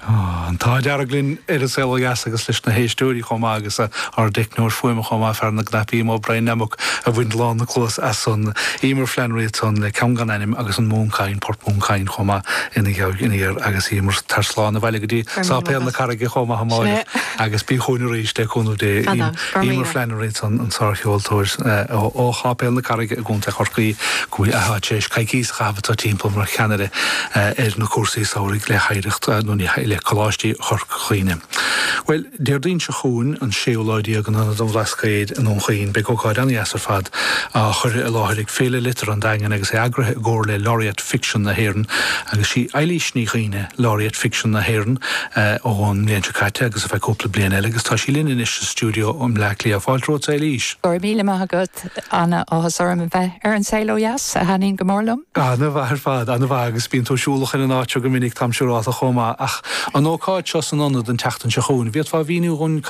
An t-ádh dearg linn ar An Saol Ó Dheas agus leis na héisteoirí chomh maith agus ár dteicneoir fuaime chomh maith fear na gcnaipí imo Brian Nemmock a bhain lán na cluas as san. Emer Flannery a t-an le ceann gan ainm agus an Moon Cain, Port Moon Cain, chomh maith ina gheabhaidh ina dhear agus Emer tar slán abhaile go dtí Sáipéal na Carraige chomh maith amáireach agus bí chughainn arís le cúnamh Dé. Emer Flannery an sárcheoltóir ó Sháipéal na Carraige i gContae Chorcaí go bhfuil sí tar éis coicíos a chaitheamh ag tá timpeall mar cheannaire ar na cúrsaí samhraidh le hOidhreacht nó le Coláistí Chorca Dhuibhne. Bhuel, Déardaoin seo chugainn, an séú lá déag in Ionad an Bhlascaoid i nDún Chaoin beidh ócáid ana-dheas ar fad á chur i láthair ag Féile Liteartha an Daingin agus é eagraithe i gcomhar le Laureate Ficsean na hÉireann, agus sí Eilís Ní Dhuibhne Laureate Ficsean na hÉireann ón mbliain seo caite agus ar feadh cúpla bliain eile agus tá sí linn anois sa stiúideo i mBleá Cliath. Fáilte romhat, a Eilís! Go raibh míle maith agat, ana-áthas orm a bheith ar An Saol Ó Dheas, a thaitníonn go mór liom. Ana-mhaith ar fad, ana-mhaith, agus bíonn tú siúlach ar an áit seo go minic, táim siúráilte chomh maith, ach an ócáid seo san Ionad an tseachtain seo chugainn, an bhféadfá a mhíniú dhúinn,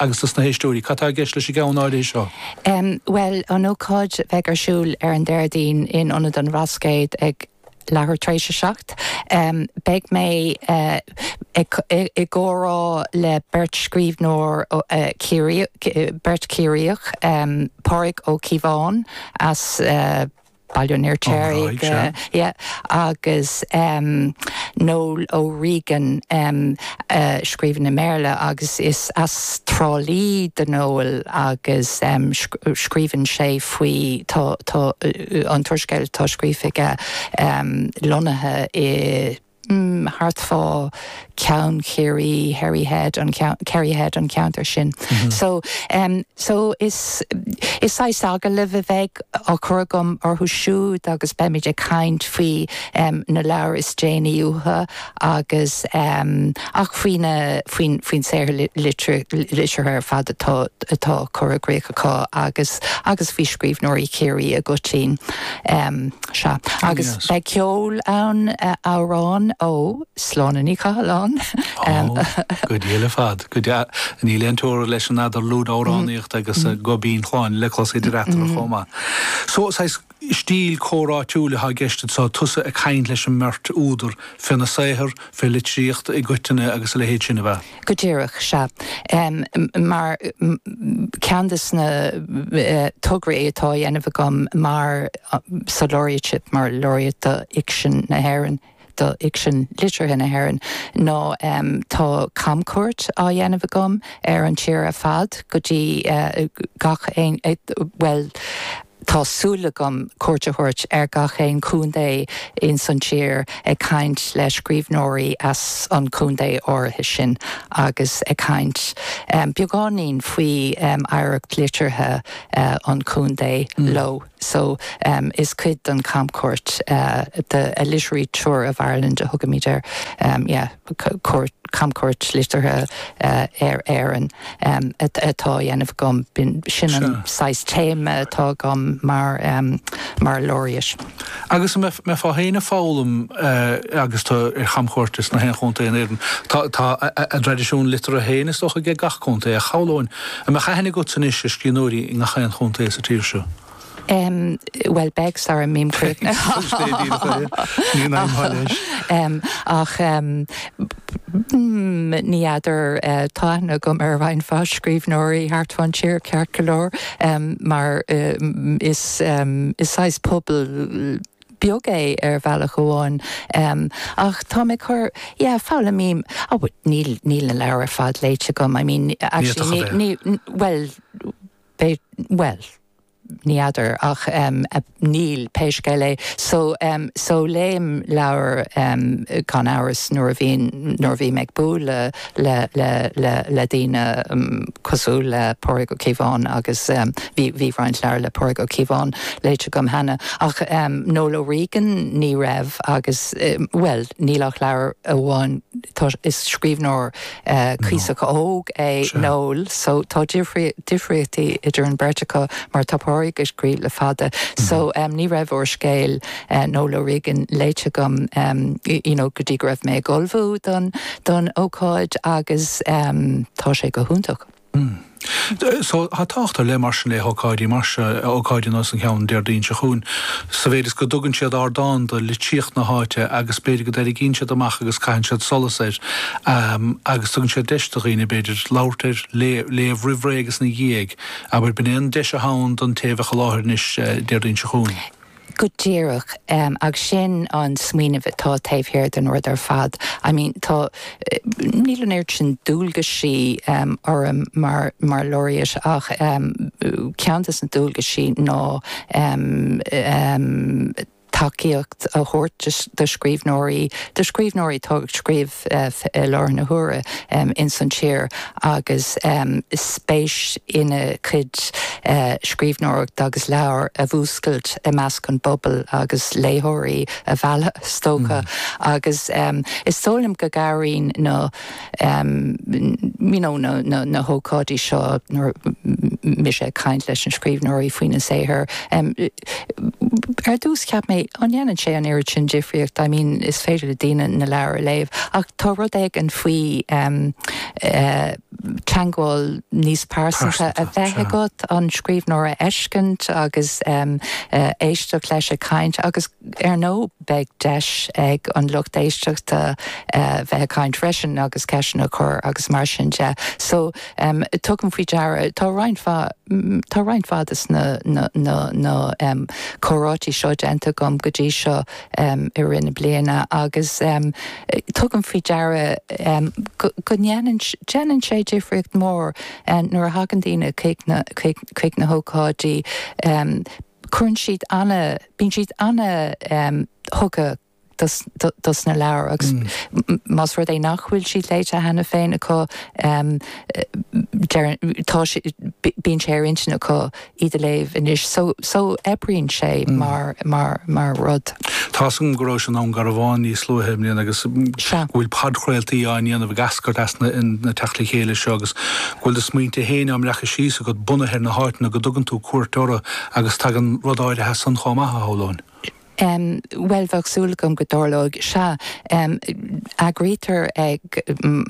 agus dos na héisteoirí, cad tá i gceist leis an gceann áirithe seo? Bhuel, an ócáid a bheidh ar siúl ar an Déardaoin in Ionad an Bhlascaoid ag leathuair tar éis a seacht, beidh mé i gcomhrá le beirt scríbhneoir Ciarraíoch, beirt Chiarraíoch, Pádraig Ó Cíobháin as. Baile an Fheirtéaraigh agus Noel O'Regan a scríobhann i mBéarla agus is as Trá Lí do Noel agus scríobhann sé faoi tá an t-úrscéal atá scríofa aige lonnaithe i thart fá Ceann Chiarraí, Kerry Head, an ceann, Kerry Head, an ceantar sin. So, em, so is, is saghas agallaimh a bheidh á chur agam orthu siúd agus beimid ag caint faoi, em, na leabhair is déanaí uathu agus, em, Ach faoin faoin saothar liteartha ar fad atá curtha i gcrích acu agus agus faoi scríbhneoirí Chiarraí i gcoitinn. Sea, agus beidh ceol ann, amhráin ó Sláine Ní Chathalláin. Ó, go diail ar fad, go diail. Níl aon teora leis an eadarlúid amhránaíochta agus guth binn Shláine le clos idir eatarthu chomh maith. So, saghas, stíl comhráitiúil atá i gceist anseo, tusa ag caint leis an mbeirt údar fé na saothair, fé litríocht i gcoitinne agus a leithéid sin, ab ea? Go díreach, sea. Mar, ceann dos na tograí atá a dhéanamh agam mar, sa Laureateship, mar Laureate do Fhicsean na hÉireann, do fhicsean liteartha na hÉireann nó tá camchuairt á dhéanamh agam ar an tír ar fad go dtí gach aon bhuel tá súil agam cuairt a thabhairt ar gach aon chontae ins an tír ag caint le scríbhneoirí as an chontae áirithe sin agus ag caint beagáinín faoi oidhreacht liteartha an chontae leo. so em is cuid den camchuairt eh the a literary tour of Ireland a thugaimid air em yeah cuairt camchuairt liteartha eh ar Éirinn em atá á dhéanamh agam sin an saghas téama atá agam mar em mar Laureate. Agus mé fhéin ag foghlaim eh agus tá ar chamchuairt insna haon chontae in Éirinn tá tá a traidisiún liteartha fhéin is dócha ag gach contae a shamhlóinn An mbeadh aithne agatsa anois ar scríbhneoirí i ngach aon chontae sa tír seo? Bhuel, beidh, sara mbím críochnaithe. Ní fheadar, tá aithne agam ar roinnt mhaith scríbhneoirí thart fán tír, ceart go leor, mar is saghas pobal, beag é ar bhealach amháin em ach tá mé cur yeah foghlaim but níl níl na leabhair ar fad léite agam I mean actually ní ní bhuel bhuel ní fheadar ach em níl pé scéal é so em so léim leabhar em gan amhras nuair a bhíonn nuair a bhím ag bualadh le le le le daoine cosúil le Pádraig Ó Cíobháin agus bhí bhí roinnt leabhar le Pádraig Ó Cíobháin léite agam cheana ach Noel O'Regan ní raibh agus bhuel níl ach leabhar amháin tá is scríbhneoir cuíosach óg é Noel so tá difríochtaí idir an bheirt acu mar tá Pádraig ag scríobh le fada so ní raibh úrscéal Noel O'Regan léite agam you know go dtí go raibh mé ag ullmhú don ócáid agus tá sé go hiontach. So, tá tábhacht ar leith mar sin le hócáidí mar seo, ócáidí nós an cheann Déardaoin seo chugainn, sa mhéid is go dtugann siad ardán do litríocht na háite agus b'fhéidir go dtarraingíonn siad amach agus caitheann siad solas air agus tugann siad deis do dhaoine b'fhéidir labhairt air, léamh roimh ré agus ina dhiaidh. Abair, b'in é an deis atá ann don té a bheadh i láthair anois Déardaoin seo chugainn. Go díreach, agus sin an smaoineamh atá taobh thiar den rud ar fad. I mean, tá, níl an oiread sin dualgaisí orm mar, mar Laureate ach ceann de na dualgaisí ná tacaíocht a thabhairt do scríbhneoirí, do scríbhneoirí atá ag scríobh, i láthair na huaire ins an tír agus spéis ina gcuid scríbhneoireachta agus leabhar a mhúscailt i measc an phobail agus léitheoirí a mhealladh is dócha agus is dóigh liom go gcabhraíonn na you know na hócáidí seo nuair atá mise ag caint leis na scríbhneoirí faoina saothar. ar dtús cheap mé an ndéanann sé an oiread sin difríocht I mean is féidir le daoine na leabhair a léamh ach tá rud éigin faoi ehm eh teagmháil níos pearsanta a bheith agat an scríbhneoir a fheiscint agus ehm eh éisteacht leis ag caint agus ar ndóigh beidh deis ag an lucht éisteachta eh bheith ag caint freisin agus ceisteanna a chur agus mar sin de so Tugaim faoi deara, tá roinnt mhaith, tá roinnt mhaith de na, na, na, na um comhráití seo déanta agam go dtí seo um i rith na bliana agus um tugaim faoi deara um go, go ndéanann, déanann sé difríocht mhór um nuair a thagann daoine chuig na, chuig, chuig na hócáidí um cuireann siad ana, bíonn siad ana um thugtha dos na leabhair agus más rud é nach bhfuil siad léite cheana féin acu bíonn sé ar intinn acu iad a léamh anois so oibríonn sé mar rud. Tá a fhios agam go rabhais i nDún Garbhán níos luaithe i mbliana agus go bhfuil podchraoltaí á ndéanamh ag eascairt as na teachtaí le chéile seo agus go bhfuil do smaointe féin á mbreacadh síos agat bunaithe ar na háiteanna go dtugann tú cuairt orthu agus tagann rud áirithe as san chomh maith a shamhlóinn. Bhuel, bheadh súil agam go dtarlóidh. Sea, eagraítear ag,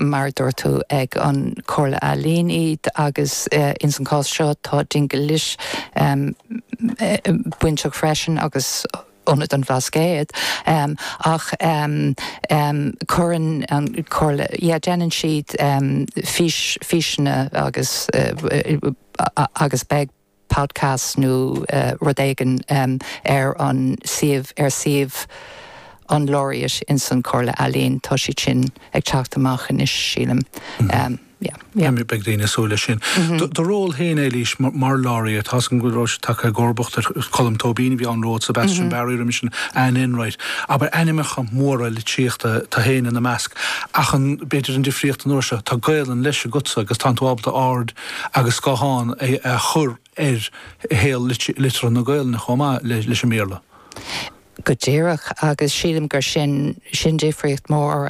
mar a dúirt tú, ag an Comhairle Ealaíon iad agus ins an cás seo tá Dingle Lit bainteach freisin agus Ionad an Bhlascaod ach cuireann an Comhairle, yeah, déanann siad fís, físeanna agus, agus beidh. podcast nó rud éigin ar an suíomh, ar suíomh an Laureate ins an Chomhairle Ealaíon. Tá siad sin ag teacht amach anois, sílim. Yeah. Beidh daoine ag súil leis sin. Do ról féin, Eilís, mar Laureate, tá a fhios againn go bhfuil tú tagtha i gcomharbacht ar Cholm Tóibín a bhí ann romhat, Sebastian Barry, roimis sin Anne Enright, abair, ainmeacha móra litríochta, tánn tú féin ina measc. Ach an, b'fhéidir an difríocht an uair seo, tá Gaolainn leis agatsa agus tánn tú ábalta aird agus guthán a chur ar shaol liteartha na Gaolainne chomh maith leis an mBéarla. Go díreach, agus sílim gur sin, sin difríocht mhór.